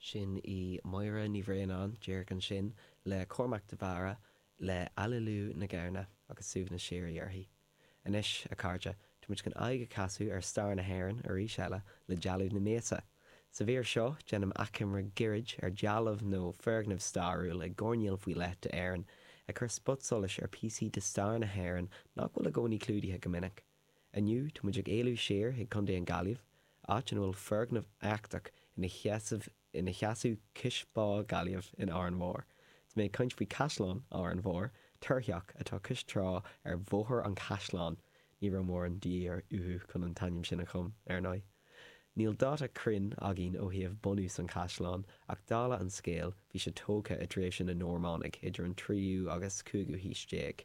Sin í Máire Ní Bhraonáin, díreach ansin, le Cormac de Barra, le Aililiú na Gamhna agus suaimhneas síoraí uirthi. Anois, a chairde, táimid chun aghaidh a chasadh ar stair na hÉireann arís eile le dealbh na míosa. Sa mhír seo, déanaim achoimre gairid ar dealbh nó foirgneamh stairiúil i gcoirnéal faoi leith d'Éirinn, ag cur spotsolais ar píosaí de stair na hÉireann nach bhfuil i gcónaí clúdaithe go minic. Inniu tá muid ag éalú siar chuig Contae an Gaillimh, áit ina bhfuil foirgneamh éachtach ina sheasamh cois bá Gaillimh in Órán Mhór. Tá mé ag caint faoi Caisleán Órán Mhór, túrtheach atá cois trá ar Bhóthar an Chaisleáin. Ní raibh mórán de dhíth uathu chun an t-ainm sin a chum, ar ndóigh. Níl dáta cruinn againn ó thaobh bunús an chaisleáin, ach dála an scéil bhí sé tógtha i dtréimhse na Normánaigh idir an tríú agus cúigiú haois déag.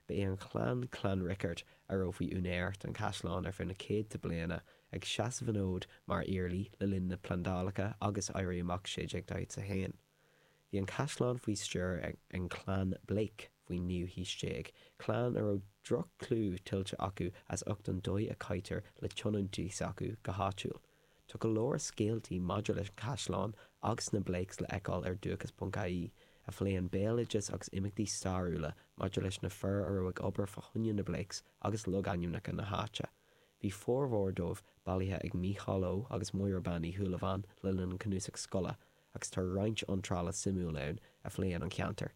Ba é an chlann Clanricarde a raibh faoi úinéir don Chaisleán ar feadh na céadta bliana, ag seasamh an fhóid mar iarlaí le linn na plandálacha agus Éirí Amach 1641. Bhí an Caisleán faoi stiúir an chlann Blake faoin naoú haois déag, clann a raibh droch-chlú tuillte acu as ucht an dóigh a chaitear le tionóntaí s'acu go háitiúil. Tá go leor scéaltaí maidir leis an Chaisleán agus na Blakes le fheiceáil ar Dúchas.ie, a phléann béaloideas agus imeachtaí stairiúla maidir leis na fir a raibh ag obair fá choinne na Blakes agus logainmneacha na háite. Bhí formhór dóibh bailithe ag Mícheál Ó agus Máire Bean Uí Shúilleabháin le linn an cnuasach scoile, agus tá roinnt iontrála suimiúil ann a phléann an ceantar.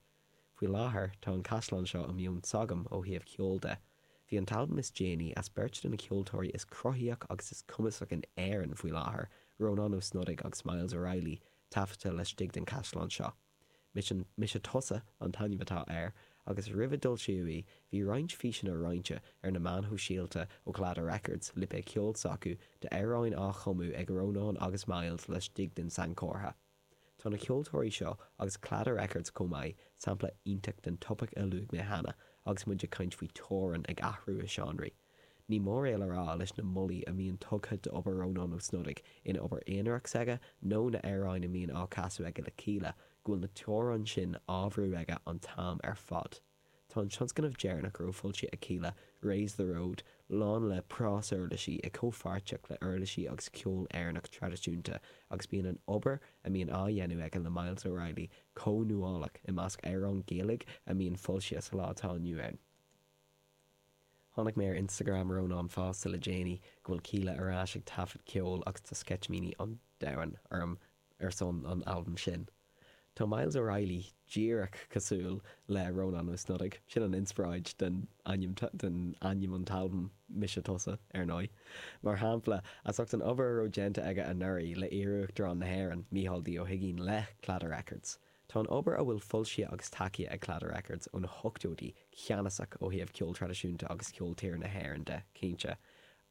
Faoi láthair tá an caisleán seo i meon s'agam ó thaobh ceoil de. Bhí an t-albam is déanaí as beirt de na ceoltóirí is cruthaíoch agus is cumasach in Éirinn faoi láthair, Rónán Ó Snodaigh agus Myles O'Reilly, taifeadta laistigh den chaisleán seo. Mise Tusa an t-ainm atá air agus roimh a d'fhoilsíodh í bhí roinnt físeanna roinnte ar na meáin shóisialta ó Claddagh Records, lipéad ceoil s'acu, d'amhráin á chumadh ag Rónán agus Myles laistigh den sainchomhartha. Tá na ceoltóirí seo agus Claddagh Records chomh maith sampla iontach den topaic a luaigh mé cheana agus muid ag caint faoi teorainn ag athrú i seánraí. Ní mór é le rá leis na moltaí a mbíonn tugtha d'obair Rónáin Ó Snodaigh ina obair aonarach s'aige nó na amhráin a mbíonn á casadh aige le Kíla go bhfuil na teorainn sin á bhrú aige an t-am ar fad. Tá an tionscnamh deireanach a raibh foilsithe ag Kíla, Raise the Road, lán le prásuirlisí i comhpháirtíocht le uirlisí agus ceol Éireannach traidisiúnta agus bíonn an obair a mbíonn á dhéanamh aige le Myles O'Reilly chomh nuálach i measc amhráin Ghaeilge a mbíonn foilsithe sa lá atá inniu ann. Chonaic mé ar Instagram Rónán fosta le déanaí go bhfuil Kíla ar ais ag taifead ceoil agus tá sceitimíní an domhain orm ar son an albaim sin. Tá Myles O'Reilly díreach cosúil le Rónán Ó Snodaigh, sin an inspioráid den ainm den ainm an t-albam Mise Tusa, ar ndóigh. Mar shampla, as ucht an obair a raibh déanta aige anuraidh le iarUachtarán na hÉireann, Micheál D. Ó hUigínn le Claddagh Records. Tá an obair a bhfuil foilsithe agus tacaithe ag Claddagh Records ó na hochtóidí ceannasach ó thaobh ceol traidisiúnta agus cheol tíre na hÉireann de, cinnte,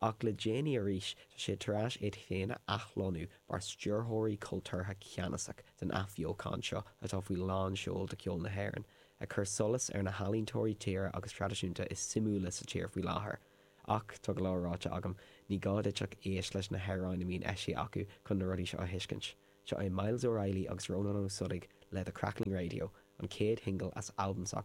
Ach le déanaí arís tá sé tar eis iad féin a athlonnú mar stiúrthóirí cultúrtha ceannasach den athbheochain seo atá faoi lán seoil do ceol na hÉireann, ag cur solas ar na healaíntóirí tíre agus traidisiúnta is suimiúla sa tír faoi láthair. Ach, tá go leor ráite agam, ní gá duit ach éist leis na hamhráin a mbíonn eisithe acu chun na rudaí seo a thuiscint. Seo é Myles O'Reilly agus Rónán Ó Snodaigh le The Crackling Radio, an chéad shingil as albam s'acu.